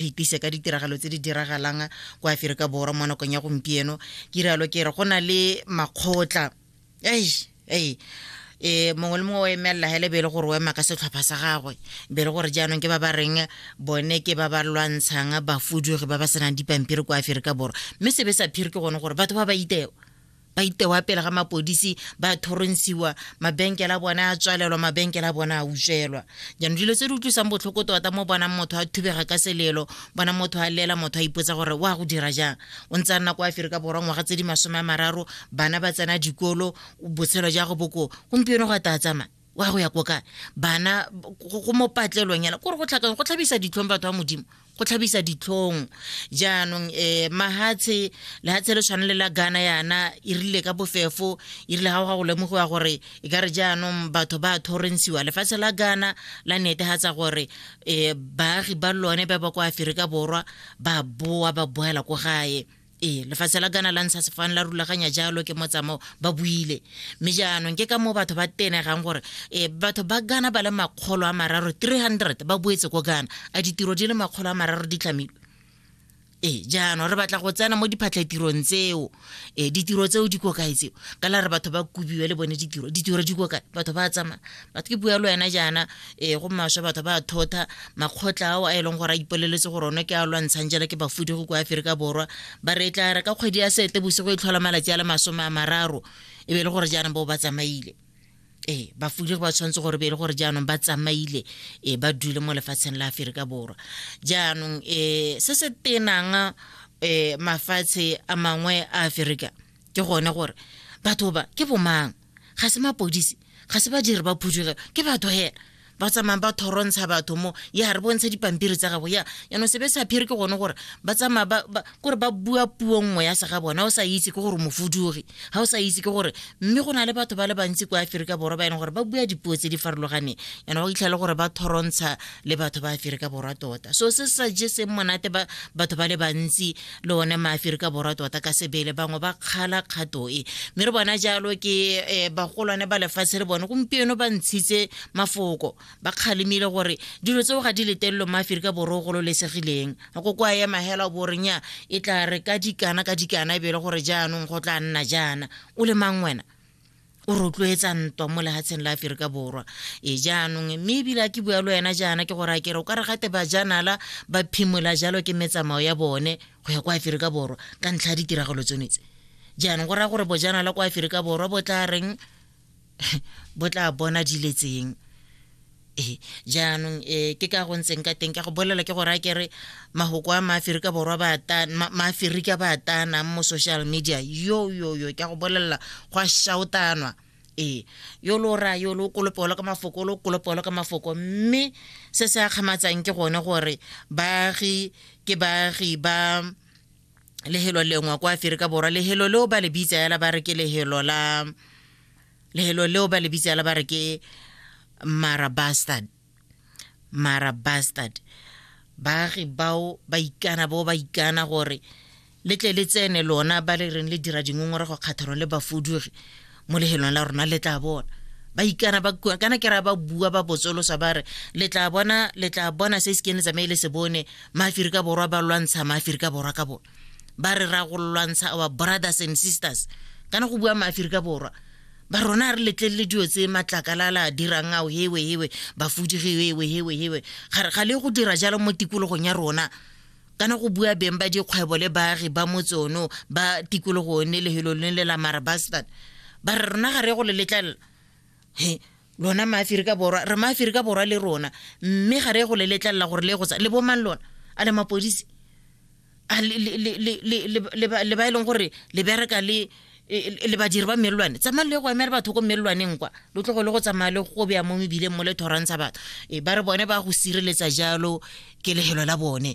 iphetise ka ditiragalo tse di diragalang kwa aferika borwa mo nakong ya gompieno ke rialo ke re go na le makgotla ei ei e mongwe le mongwe o emelela hele be e le gore o ema ka setlhopha sa gagwe be e le gore jaanong ke ba ba reng bone ke ba ba lwantshang bafudugi ba ba senang dipampiri kwa aferika borwa mme sebe sa phiri ke gone gore batho ba ba iteo ba itewa pele ga mapodisi ba thoronsiwa mabenkele a bone a tswalelwa mabenkele a bone a utswelwa jaanong dilo tse di utlwisang botlhoko tota mo bonang motho a thubega ka selelo bona motho a lela motho a ipotsa gore o a go dira jang o ntse a nna kwa aferika borwa ngwaga tse di masome a mararo bana ba tsena dikolo botshelo ja go boko gompieno go a taa tsamaya wa go ya ko kae bana go mo patlelong yana kore go tlhakang go tlhabisa ditlhong batho ba modimo go tlhabisa ditlhong jaanong um mahatshe lehatshe le tshwane le la gana yana e rile ka bofefo e rile ga go ga go lemogiwa gore e ka re jaanong batho ba thorentshiwa lefatshe la gana la netegatsa gore um baagi ba lone ba ba kwa aferika borwa ba boa ba boela ko gae ee lefatshe la kana la ntsha sefane la rulaganya jalo ke motsamao ba buile mme jaanong ke ka moo batho ba tenegang gore e batho ba gana ba le makgolo a mararo 300 ba boetse ko gana a ditiro di le makgolo a mararo di tlhamilwe ee jaanong re batla go tsena mo diphatlhatirong tseo e ditiro tseo di ko kae tseo ka la re batho ba kobiwe le bone ditiro ditiro di ko kae batho ba tsamaya batho ke bua le wena jaana um go maswe batho ba thotha makgotla ao a e leng gore a ipoleletse gore one ke a lwantshang jela ke bafudi go kwa aferika borwa ba re e tla re ka kgwedi ya sete bosigo e tlhola malatsi a le masome a mararo e be e le gore jaanong bao ba tsamaile ee bafudi ba tshwanetse gore be e le gore jaanong ba tsamaile e ba dule mo lefatsheng la aferika borwa jaanong um se se tenang um mafatshe a mangwe a aferika ke gone gore batho ba ke bomang ga se mapodisi ga se badiri ba phudugelo ke batho hela ba tsamayang ba thorontsha batho mo ya re bontsha dipampiri tsa gago ya yanong sebe sa phiri ke gone gore ba tsamaya kore ba bua puo nngwe ya se ga bone ga o sa itse ke gore mofudugi ga o sa itse ke gore mme go na le batho ba le bantsi kwa aferika borwa ba e leng gore ba bua dipuo tse di farologaneng yana ba itlhele gore ba thorontsha le batho ba aferika borwa tota so se sa je seng monate batho ba le bantsi le one maaferika borwa tota ka sebele bangwe ba kgala kgato e mme re bona jalo ke eh, bagolwane ba lefatshe le bone gompieno ba ntshitse mafoko ba kgalemile gore dilo tseo ga di letelelo maaferika borwa o gololesegileng go kwa ya mahela boreng ya e tla re ka dikana ka dikana e be e le gore jaanong go tla nna jaana o le mang wena o rotloetsa ntwa mo lehatsheng la aferika borwa e jaanong mme ebile a ke bua le wena jaana ke gore a kere o ka re gate bajanala ba phimola jalo ke metsamao ya bone go ya kwa aferika borwa ka ntlha ya ditiragalo tsone tse jaanong go raya gore bojanala kwa aferika borwa bo tla reng bo tla bona diletseng ee jaanong um ke ka go ntseng ka teng ka go bolela ke gore a kere mahoko a maaferika borwa maaferika ba atanang mo social media yo yo yo ka go bolelela go a shautanwa ee yo lo raya yo lo kolopolo ka mafoko lo kolopolo ka mafoko mme se se akgamatsang ke gone gore baagi ke baagi ba lehelo lengwe kwa aferika borwa lehelo leo ba le bitsa yala ba re ke lehelo la lehelo leo ba le bitsala ba re ke mara bastard mara bastard baagi bao ba ikana bo ba ikana gore le tle le tsene lona ba le reng le dira dingongorego kgathorong le bafudugi mo lehelong la rona le tla bona ba ikana ba kua kana ke ra ba bua ba botsolosa ba re le tla bona le tla bona se se kene tsamaye le se bone maaferika borwa ba lwantsha maaferika borwa ka bone ba re ra go lwantsha our brothers and sisters kana go bua maaferika borwa ba rona re letlelele dio tse matlakalala a dirang ao hewe hewe bafudigi hewe hewe hewe ga le go dira jalo mo tikologong ya rona kana go bua beng ba dikgwebo le baagi ba motsono ba tikologo ne lehelo le le la marabastan ba re rona ga re go le letlelela he lona maaferika borwa re maaferika borwa le rona mme ga re go le letlelela gore le go tsa le bomang lona a le mapodisi a le ba e leng gore le bereka le le badiri ba melelwane tsamayng le go emela batho ko melelwaneng kwa lo tlogo le go tsamaya le go beya mo mebileng mo le thorantsha batho e ba re bone ba go sireletsa jalo kelegelo la bone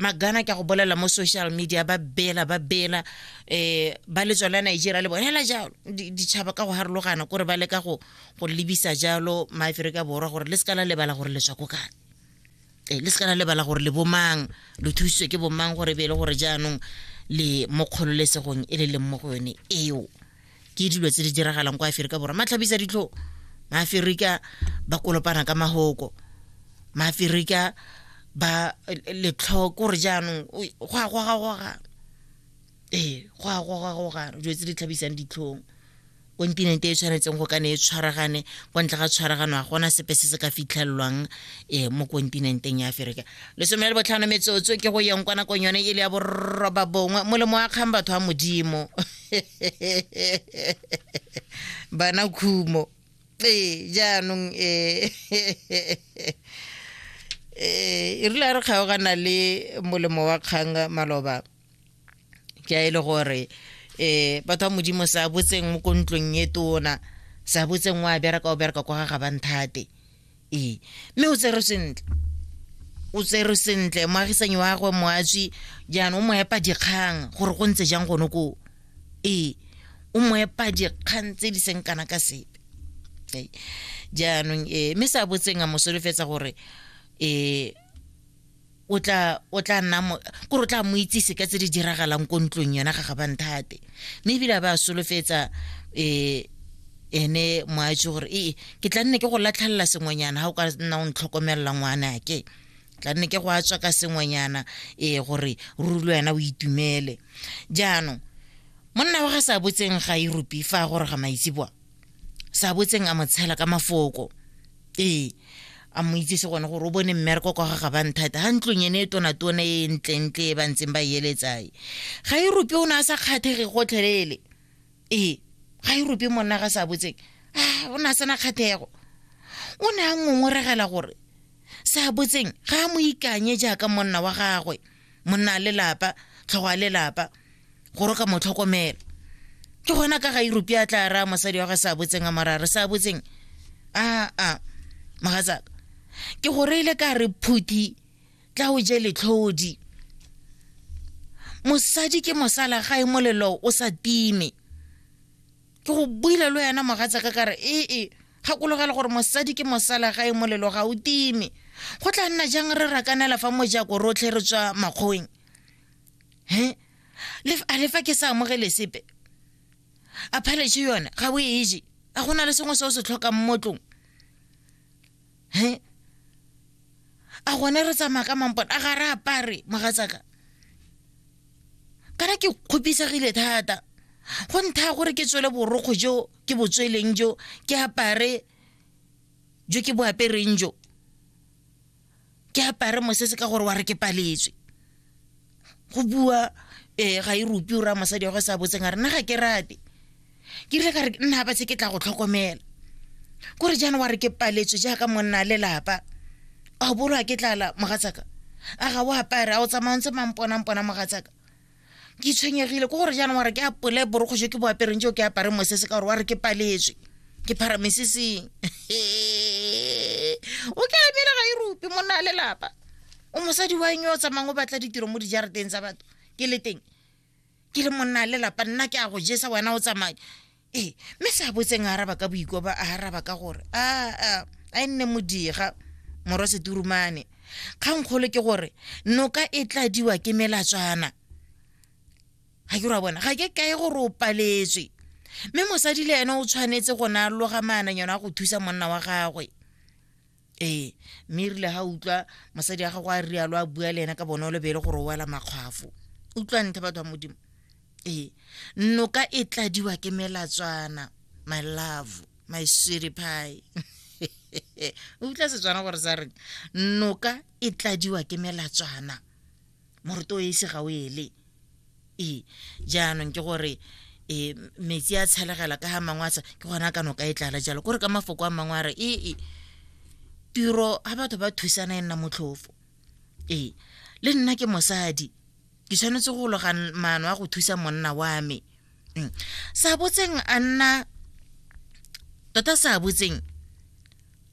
magana ke a go bolela mo social media ba bela ba bela eh ba letswa la Nigeria le bone hela jalo ditšhaba ka go harologana kore ba leka go go lebisa jalo maaferika borwa gore le sekala lebala gore letswa ko kane eh, le sekana lebala gore le bomang lo thusitswe ke bomang gore be e le gore jaanong le mo kgololesegong e le leng mo go yone eo ke dilo tse di diragalang kwa aferika borwa matlhabisa ditlho maaferika ba kolopana ka mahoko maaferika ba letlho kore jaanong go a gogagoga ee go a gogagoga dilo tse di tlhabisang ditlhong kontinente e tshwanetseng go kane e tshwaragane kwa ntle ga tshwaragano ga gona sepe se se ka fitlhelelwang um mo kontinenteng ya aferika lesome le botlhano metsotso ke go yeng kwa nakong yone e le ya borroba bongwe molemo wa kgang batho ba modimo bana khumo ee jaanong eh, eh, e rile a re kgaogana le molemo wa kgang maloba ke a e le gore eh batho ba modimo sa botseng mo kontlong e tona sa botseng wa bereka o bereka kwa ga ga banthate ee mme o tserwe sentle o tserwe sentle moagisanyi wa gagwe moatsi jaanong o mo epa dikgang gore go ntse jang gone koo ee o mo epa dikgang tse di seng kana ka sepe okay. jaanong ee mme sa botseng a mo solofetsa gore ee o tla o tla nna mo kore o tla mo itsise ka tse di diragalang ko ntlong yona ga ga banthate mme ebile a ba solofetsa um ene moatse gore ee ke tla nne ke go latlhelela sengwenyana ga o ka nna o ntlhokomelela ngwanake tla nne ke go a tswa ka sengwenyana ee gore ruri le wena o itumele jaanong monna wa ga sa botseng ga iropi fa a goroga maitseboa sa botseng a mo tshela ka mafoko ee a mo itsese gone gore o bone mmereko kwa ga gabang thata ga ntlong ene e tonatona e ntlentle e ba ntseng ba eletsae ga e rope o ne a sa kgathege gotlhelele ee ga e rope monna ga sa botseng a o ne a sena kgathego o ne a ngongoregela gore sa botseng ga a mo ikanye jaaka monna wa gagwe monna a lelapa tlhogo a lelapa gore o ka mo tlhokomela ke gona ka ga europe a tla raya mosadi wa ge sa botseng a morare sa botseng a a mogatsaka ke go reile ka re phuthi tla o je letlhodi mosadi ke mosala ga e molelo o sa time ke go buile le wena mogatsaka ka re ee gakologelwa gore mosadi ke mosalagae molelo ga o time go tla nna jang re rakanela fa mojako rotlhe re tswa makgoweng he a le fa ke sa amogele sepe a phaletše yone ga o e je a go na le sengwe se o se tlhokang mo tlong he a gone re tsamaya ka mampone a ga re apare mogatsaka kana ke kgopisegile thata go ntha gore ke tswele borokgo jo ke bo tsweleng jo ke apare jo ke bo apereng jo ke apare mosese ka gore wa re ke paletswe go bua um ga e rupi o raya mosadi wa go sa botseng a re nna ga ke rate ke rile ka re nna ba se ke tla go tlhokomela kore jaana wa re ke paletswe jaaka monna lelapa a o bolwa ke tlala mogatsaka a ga o apare a o tsamaya ntse mangponangpona mogatsaka ke tshwenyegile ko gore jaanong wa re ke apole borokgo jo ke bo apereng jo ke apare mosese ka gore wa re ke paletswe ke phara meseseng o ke abela ga e rupe monna a lelapa o mosadi wa eng o tsamayng o batla ditiro mo dijarateng tsa batho ke le teng ke le monna a lelapa nna ke a go jesa wena o tsamaya ee mme se a botseng a araba ka boikoba a araba ka gore a a a e nne modiga morwa seturumane kgankgolo ke gore noka e tladiwa ke melatswana ga ke ra bona ga ke kae gore o paletswe mme mosadi le ene o tshwanetse go na loga maananyana a go thusa monna wa gagwe ee mme e rile ga utlwa mosadi ya gago a rialo a bua le ena ka bonolo be e le gore o wela makgwafo utlwa nthe batho ba modimo ee noka e tladiwa ke melatswana my love my sweetie pie utlwa setswana gore sa reng noka e tladiwa ke melatswana moruto o ise ga o ele ee jaanong ke gore e metsi a tshelegela ka ga mangwe a tsa ke gona ka noka e tlala jalo kore ka mafoko a mangwe a re ee tiro ga batho ba thusana e nna motlhofo ee le nna ke mosadi ke tshwanetse go loga maano a go thusa monna wa me mm. sa botseng a nna tota sa botseng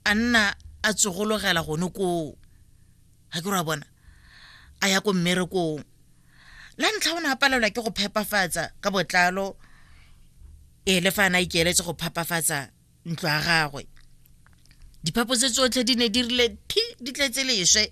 a nna a tsogologela gone koo ga ke ra bona a ya ko mmerekong la ntlha o ne a palelwa ke go phepafatsa ka botlalo ee le fa a na ikeeletse go phapafatsa ntlo ya gagwe diphapo tse tsotlhe di ne di rile phi di tletse leswe